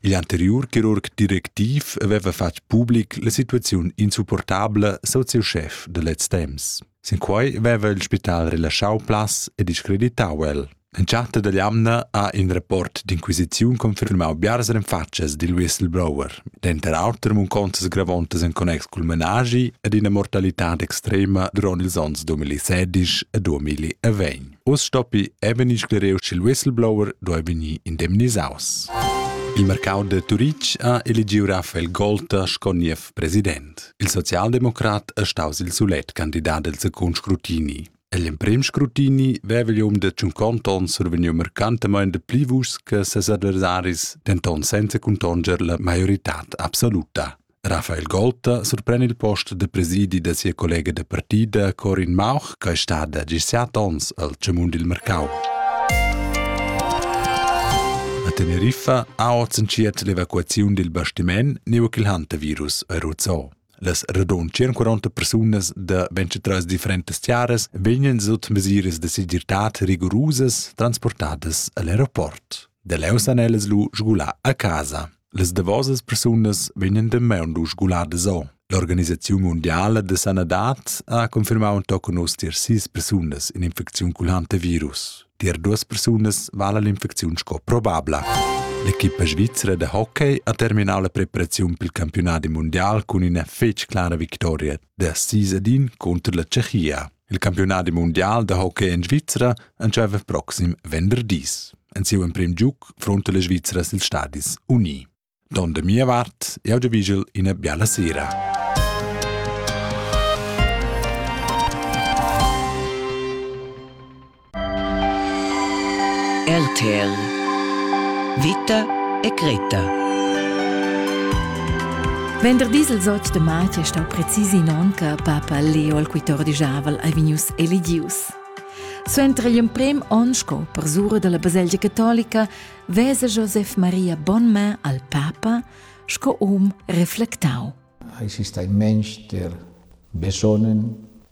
Igl anteriur chirurg directiv aveva fatg public la situaziun insupportabla sut siu schef da lez temps. Sin quei veva il spital relaschau plaz e discreditau el. Entschatta dall'amna ha in rapport d'inquisiziun confirmau biars renfatschas dil whistleblower, denter auter muncontas gravontas en connex cul menaschi ed ina mortalitad extrema duront ils onns 2016 e 2020. Uss stoppi è vegnì sclereu ch'il whistleblower duai vegnir indemnisaus. Il mercau da Turitg ha eligiu Rafael Golter sco niev president. Il socialdemocrat è staus il sulet candidat del secund scrutini. L'emprim scrutini vevelium de cinquanta onns survegniu mercantemente pli vuschs che ses adversaris, denton senza contonger la maioritad absoluta. Rafael Golta surpren il post da presidi da sia collega da partida Corin Mauch, che è stada gis set onns al Cemun dil mercau. A Teneriffa ha oz entschiet l'evacuaziun dil bastiment neu ch'il hantavirus è ruzzò. Las radun 140 persunas da 23 differentes tiaras vegnan sut mesiras de segirtad rigorosas transportadas al aeroport. De leu san ellas lu sgular a casa. Las davosas persunas vegnan damaun lu sguladas o. L'organisaziun mundiala da sanadad ha confirmau tochen oz tier sis persunas in'infecziun culhanta virus. Tier duas persunas vala l'infecziun sco probabla. L'equipa svizra de hockey ha terminau la preparaziun pel campionat mundial cun ina fetg clara victoria da sis ad in contro la Tschechia. Il campiunadi mundial da hockey en Svizra entscheiva proxim venderdis. En siu emprim giug fronta le Svizra sil Stadis Uni. Don de mia vart, eu de vigil ina biala sera. RTL Vita e Greta Venderdis il zot de matg è stau precisi in onca papa Leo il quittor di Javel ei vegnius elegius. Suenter igl emprem onn sco persura della baselgia catolica vesa Josef Maria Bonmain al papa sco um reflectau. Exista in mensch, der besonnen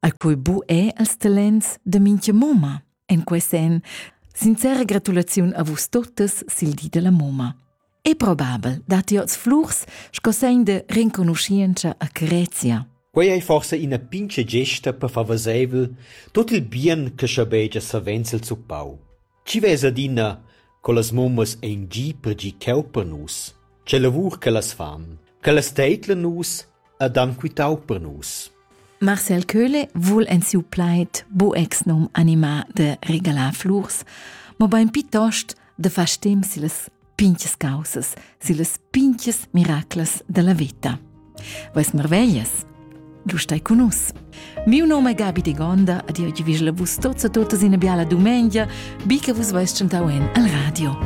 al quei bu è als talents de mincha mumma. En quei sen, sincera gratulaziun a vus totes sil di della mumma. È probabel dat ti oz flurs sco segn de renconuscienza a Carezia. Quei ei forse ina pince gesta per favoseivel tot il bien che schabegia savenzel zuppau. Chi vess adina co las mummas ein gie per gie cheu per nus, che lavur che las fan, che las teidlan nus ed han quitau per nus. Marcel Köhle vul en siu plaid bu exnom animar de regalar flurs, mobein piuttost de far stem si las pinches causas sillas pinches miraclas della vita. Vais marveglias? Du stai con us. Miu nome è Gabi de Gonda, ad io vis la vus tozza totas in biala dumengia, bi che vus vais chantau en al radio.